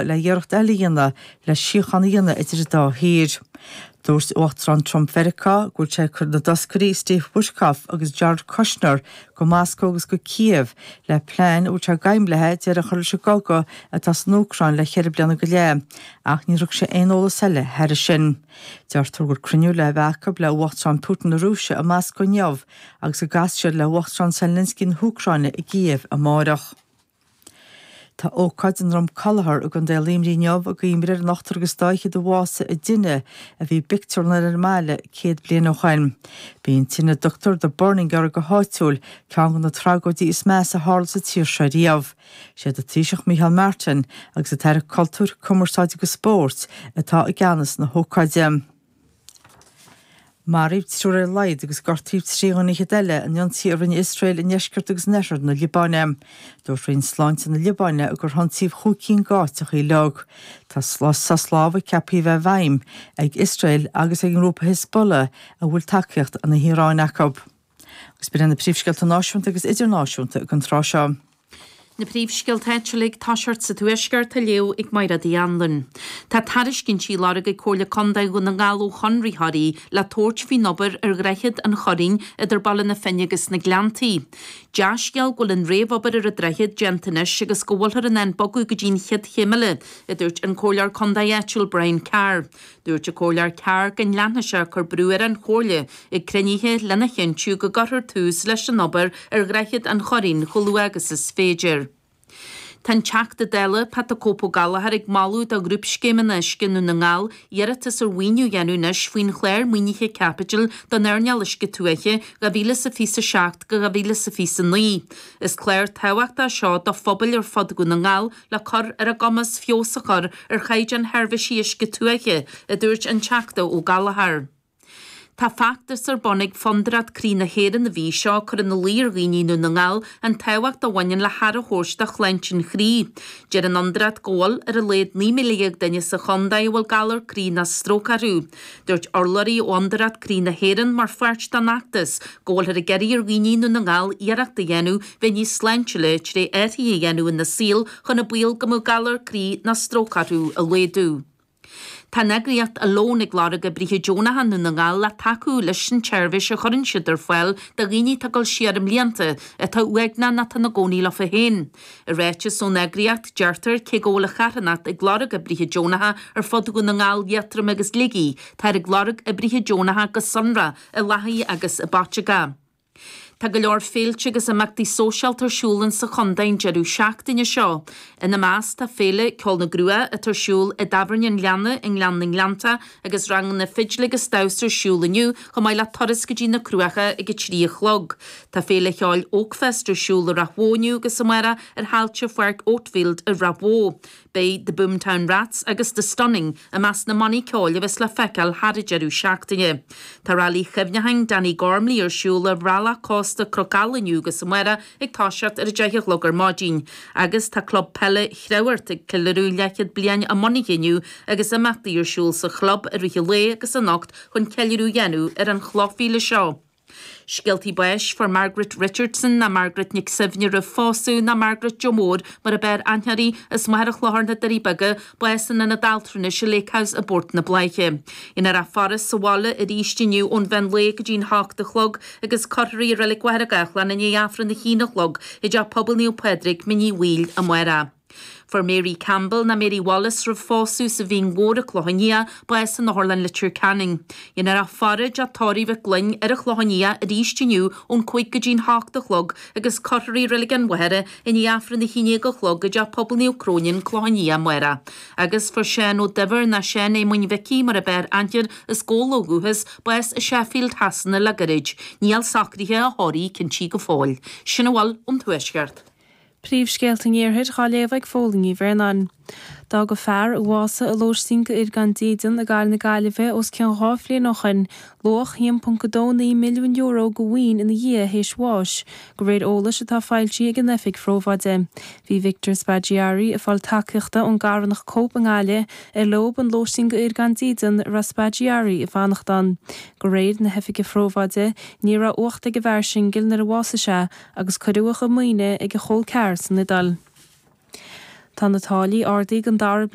le hiarracht eile a dhéanamh le síocháin a dhéanamh idir an dá thír. Dúirt Uachtarán Trump Mheiriceá go bhfuil sé ag cur na dtoscairí Steve Witkoff agus Jared Kushner go Moscó agus go Kyiv le plean a bhfuil sé d'aidhm léithi deireadh a chur leis an gcogadh atá san Úcráin le ceithre bliana go leith ach níor thug sé aon eolas eile thairis sin. Deirtear go bhfuil cruinniú le bheith acu le hUachtarán Putin na Rúise i Moscó inniu agus go gcasfaidh siad le hUachtarán Zelensky na hÚcráine i gKyiv amárach. Tá ócáid i nDrom Collachair i gContae Luimnigh inniu i gcuimhne ar an ochtar agus dá fhichead a bhásaigh i dtine a bhí i bpictiúrlann ar an mbaile céad bliain ó shoin. B'í an tine a dtugtar The Burning air go háitiúil ceann de na tragóidí is measa a tharla sa tír seo riamh. Siad an Taoiseach Micheál Martin agus an tAire Cultúir, Cumarsáide agus Spóirt atá i gceannas na hócáide. Maraíodh triúr ar a laghad agus gortaíodh trí dhuine fhichead eile in ionsaí a rinne Iosrael i ndeisceart agus in oirthear na Liobáine. Dúirt Roinn Sláinte na Liobáine gur hionsaíodh chúig cinn d'áiteachaí uilig. Tá sos lámhaigh ceaptha a bheith i bhfeidhm ag Iosrael agus ag an ngrúpa Hezbollah a bhfuil tacaíocht na hIaráine acu. Agus b'in iad na príomhscéalta náisiúnta agus idirnáisiúnta ag an tráth seo. Na príomhscéalta áitiúla, ag tosacht sa Tuaisceart á léamh ag Mairéad Uí Anluain. Tá tairiscintí á lorg ag Comhairle Contae Dhún na nGall ó chonraitheoirí le tabhairt faoin obair ar Dhroichead an Churraoin idir Baile na Finne agus na Gleanntaí. Dea-scéal go bhfuil an réamhobair ar an droichead déanta anois agus go bhfuilthear in ann bogadh go dtí an chéad chéim eile, a dúirt an Comhairleoir Contae áitiúil Brian Carr. Dúirt an Comhairleoir Carr go leanfadh sé ag cur brú ar an Chomhairle ag cruinnithe lena chinntiú go gcuirfear tús leis an obair ar Dhroichead an Churraoin chomh luath agus is féidir. Tá an Teachta Dála Pat the Cope Ó Gallchóir ag moladh do Ghrúpscéimeanna Uisce Dhún na nGall iarratas ar mhaoiniú a dhéanamh anois faoin Chlár Maoinithe Caipitil don Earnáil Uisce Tuaithe 2027 go 2029. Is clár tábhachtach é seo do phobail ar fud Dhún na nGall, le cur ar a gcumas feabhas a chur ar chaighdeán sheirbhísí uisce tuaithe, a dúirt an Teachta Ó Gallchóir. Tá feachtas ar bun ag Fondúireacht Croí na hÉireann an mhí seo ag cur ina luí ar dhaoine i nDún na nGall an tábhacht a bhaineann le haire a thabhairt do shláinte an chroí. Deir an Fhondúireacht go bhfuil ar a laghad 19,000 duine sa chontae a bhfuil galar croí ná stróc orthu. Dúirt urlabhraí ó Fhondúireacht Croí na hÉireann, mar pháirt den fheachtas, go bhfuilthear ag iarraidh ar dhaoine i nDún na nGall iarracht a dhéanamh bheith níos sláintiúla tré athruithe a dhéanamh ina saol chun an baol go mbeadh galar croí ná stróc orthu a laghdú. Tá an eagraíocht Alone ag lorg oibrithe deonacha i nDún na nGall le tacú leis an tseirbhís a chuireann siad ar fáil do dhaoine atá ag dul siar i mblianta atá uaigneach ná atá ina gcónaí leofa féin. I ráiteas ón eagraíocht, deirtear, Cé go bhfuil an charthanacht ag lorg oibrithe deonacha ar fud Dhún na nGall, Liatroim agus Shligigh, táthar ag lorg oibrithe deonacha go sonrath i Lathaigh agus i bPaiteagó. Tá go leor féilte agus imeachtaí sóisialta ar siúl in sa chontae an deireadh seachtaine seo. Ina measc tá Féile Ceol na gCruach atá ar siúl i dTábhairne an Ghleanna i nGleann na nGleannta, agus ranganna fidle agus damhsa ar siúl inniu, chomh maith le turas go dtí na Cruacha ag a trí a chlog. Tá féile cheoil Oakfest ar siúl i Ráth Bhoth inniu agus amáireach ar thailte Pháirc Oakfield i Ráth Bhoth. Beidh The Boomtown Rats agus The Stunning i measc na mbannaí ceoil a bheas le feiceáil thar an deireadh seachtaine. Tá Railí Cuimhneacháin Danny Gormley ar siúl ar bhealach cósta Cnoc Ealla inniu agus amáireach, ag toiseacht ar a deich a chlog ar maidin agus tá club peile Chreamhghoirt ag ceiliúradh leathchéad bliain a mbunaithe inniu agus imeachtaí ar siúl sa chlub i rith an lae agus anocht chun ceiliúradh a dhéanamh ar an chlochmhíle seo. Scéaltaí Báis. Fuair Margaret Richardson Ná Margaret Nic Suibhne Roimh Phósadh Ná Margaret Joe Mór mar ab fhearr aithne uirthi as Machaire Chlochair, Na Doirí Beaga bás in Ionad Altranais an Lake House i bPort na Bláiche. Déanfar a faire sa bhaile arís inniu ón mheán lae go dtí'n hocht a chlog agus cuirfear í i Reilig Mhachaire Gathlán i ndiaidh Aifreann a haon a chlog i dTeach Pobail Naomh Pádraig, Mín Uí Bhaoill, amáireach. Fuair Mary Campbell ná Mary Wallace roimh phósadh as an Mhín Mhór, An Clochán Liath bás in Otharlann Leitir Ceanainn. Déanfar a faire i dTeach Tórraimh Mhic Gloinn ar an Chlochán Liath arís inniu ón cúig go dtí'n hocht a chlog agus cuirfear í i Reilig an Mhachaire I ndiaidh Aifreann a haon déag a chlog, i dTeach Pobail Naomh Cróine, An Clochán Liath, amáireach. Agus fuair Seán Ó Duibhir, ná Seán Éamoinn Mhicí mar ab fhearr aithne air, as Gabhla ó dhúchas, bás i Sheffield Shasana le gairid. Níl socraithe a thórraimh cinntithe go fóill. Sin a bhfuil ón Tuaisceart. Príomhscéalta an Iarthair dhá léamh ag Phóilín Ní Bhraonáin. D'fhág fear a bhásaigh i lóistín do fhir gan dídean i gcathair na Gaillimhe os cionn dhá bhliain ó shoin, luach €1.29 milliún de mhaoin ina dhiaidh théis bháis, go réir eolais atá foilsithe ag an Oifig Phrobháide. Bhí Victor Spaggiari ag fáil tacaíochta ón gcarthanacht Cope i nGaillimh ar leob an lóistín do fhir gan dídean a raibh Spaggiari ag fanacht ann. Go réir na hOifige Phrobháide, ní raibh uacht ag an bhfear singil nuair a bhásaigh sé, agus cuireadh a chuid maoine ag a chol ceathar san Iodáil. Tá na táillí ardaithe ag an dara